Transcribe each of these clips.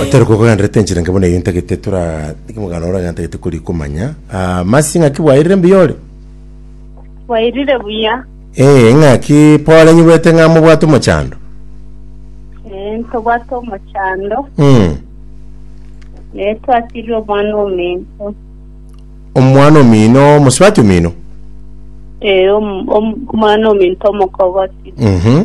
Otari kokogenderete enchera enke buna eyio ntagete tora niki mogano ore ntagete kori komanya. Ah, masi ng'aki bwairire mbuya ore? Bwairire buya. Eh, ng'aki pore nyigwete ng'a mobwate omochando. Eh, ntobwate omochando. Mm. Eh, twasirire omwana omento. Omwana omino, mosibati omino. Eh, om- om- omwana omento omokogoti. Mhm.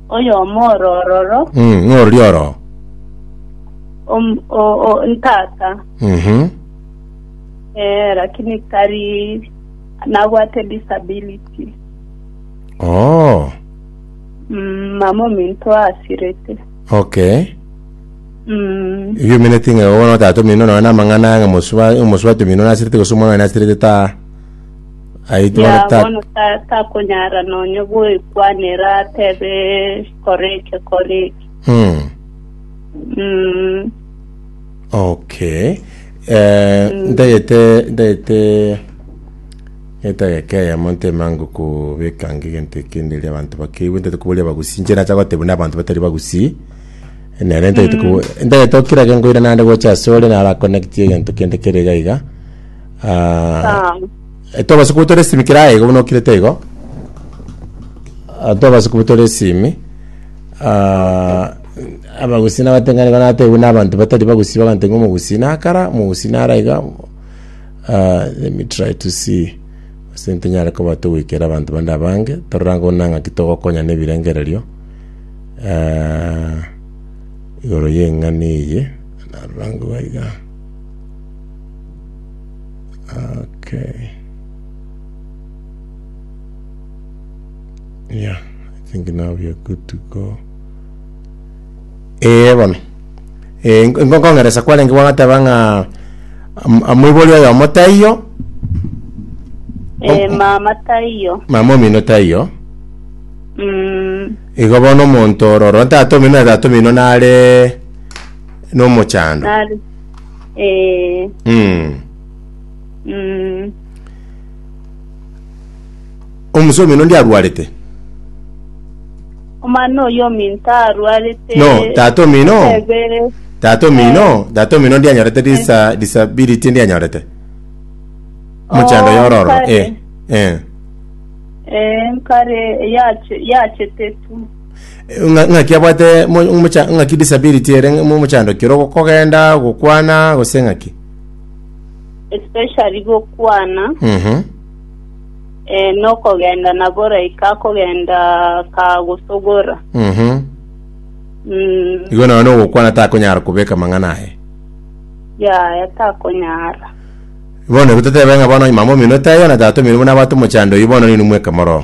Oyomo oro ororo, Mm, ng'a orori oro. om- o- o- ntata, Mhm. eh, lakini tari nabwate disability. Oh, Mm, mama ominto asirete. okay. Mm, Ebio omeneti ng'a bono tata omino nonya na amang'ana ng'a mosuba, omosuba tomino nasirete gose omwana oye nasirete ta. Aye intwe bono ta- bono ta- takonyara nonya goekwanera atebe kora eke kora eke Mm. Mm, okay Eh, ntagete ntagete etageka eyemo ntemango kobeka nge egento ekende eri abanto bakeiwe ntagete koboria abagusi inche nacha goteba buna abanto batari bagusi nere ntagete kobo ntagete okira gento ira naende gocha ase ore naro aconnectie egento kende kere iga iga Ah, eh, tobasa kuba tore esimi kera aigo buna okirete igo Ah, tobasa kuba tore esimi Ah, abagusii nabateng'ani igo natebiwe na abanto batari bagusii baganteng'ia omogusii nakara omogusii nara iga Ah, let me try to see ase ntonyare koba togoikera abanto bande abange torora ng'o buna ng'aki togokonya na ebirengererio Ah, igoro y'eng'ani eye narora ng'o iga Okay. Yeah, I think now we are good to go. Eh, bono. Eh, nko- nkong'eresa kwarenge bwagateba ng'a am- amoibori oyo omotaiyo, Eh, mama taiyo mama omino taiyo. mm, Igo bono omonto ororo, tata omino na tata omino nare nomochando. nari Eh, Mm. mm, Omusa omino ndi arwarete. omwana oyo ominto arwarete No, tata omino. Ebe- Tata omino, tata omino ndi anyorete disa disability ndi anyorete. Muchando Oh, yororo. kare. Eh. Eh. eh, nkare yache yachetetu Ng'a- ng'aki abwate mo- mocha- ng'aki disability ere mo- omochandokire ogo kogenda gokwana gose ng'aki especially gokwana Mhm. eh, nokogenda nabo like akogenda kagosogora Mhm. mm, igo naye nogokwana takonyara kobeka amang'ana aye yaya takonyara bono igo totebe ng'a bono mama omino taiyo na tata omino buna abwate omochando oyio bono nini mweka moro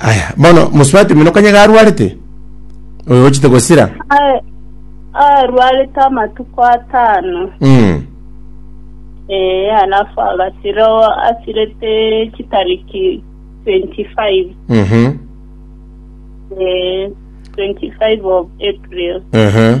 Aya, bono mosubati omino konya iga arwarete, oyo ochete gosira. Ae- Arwarete amatuko atano. Mm. Eh, alafu agasira o- asirete chitariki 25. Mhm. Eh, 25 of April. Ehe.